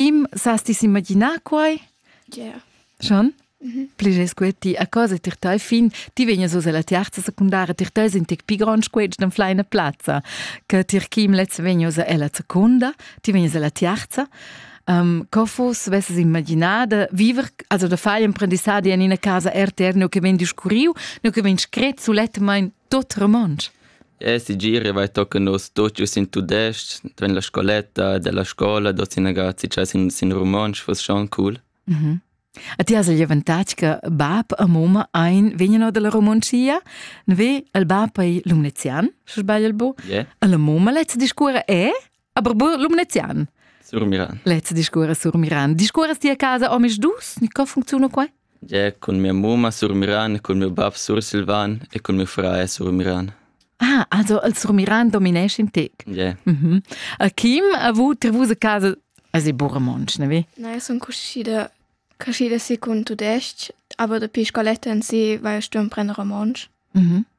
Im sas ti s'imaginar quai? Yeah. Schon? Pliges que ti a cosa tir tai fin, ti vegnas us alla terza secundara tir te sin tic pi grond squetsch den fleina plazza, che tir kim letz vegnas ella secunda, ti vegnas alla terza. Um, co fus vesses imaginada viver, also da fai imprendissadi en ina casa erterno che vegn discurriu, no che vegn scret sulettmain Tot romontsch. E sigir vai tochen nus tut giu sin tudestg, tven la scoletta della scola, dot sin ragazzi cha sin, sin romontsch fuss schon cool. Mhm. Mm A ti has il avantatg che bab e moma ein vegneno dalla Romoncia, ne ve il bab ei lumnezian, se sbagl il bu, yeah. e la moma lezza discurra è Aber Lumnezian. Sur Miran. Let's discurre sur Miran. Discurres ti a casa omis dus? Ni co funcziona qua? Ja, con mia muma sur Miran, con mio bab sur Silvan e con mio frae sur Miran. Ah, also il sur Miran dominesce in te. Ja. Mhm. A Kim, a vu trevus a casa Asi Burmonch, ne vi? Nein, sono cuscida, cuscida si con tudesc, aber da pi scoletta in si, weil stum prendere romansch. Mhm.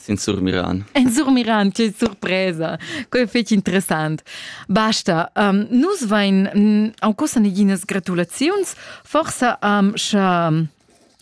Sin surmiran. En surmiran, che surpresa! Quei fetg interessant. Basta. Um, nus vein en cosa neginas gratulaziuns, forsa um, sche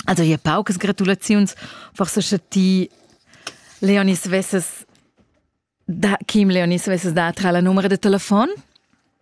also hier paucas gratulaziuns, forse sche ti Leonis vesses da Kim Leonis vesses da tra la numero de telefon?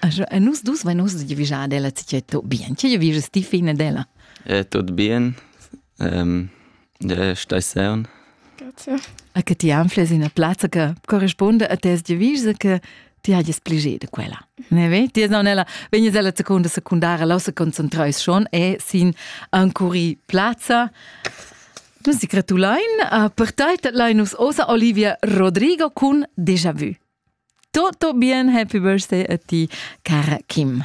Also, e nus dus vein ussa giavischà ad ella tgi tot bien. Tgi giavischas ti fin ad ella? Eh, tot bien. Ähm, ja, stai sern. Grazie. A che ti anfles in plazza che corrisponde a tes giavischs che ti hagies pligier de quella. Ne ve? Ti non ella vegnes ella seconda secundara la se concentreis schon e sin ancuri plazza. Nus ti gratulein a per tai lainus osa Olivia Rodrigo cun Déjà vu. Tutto bien, happy birthday a ti, cara Kim.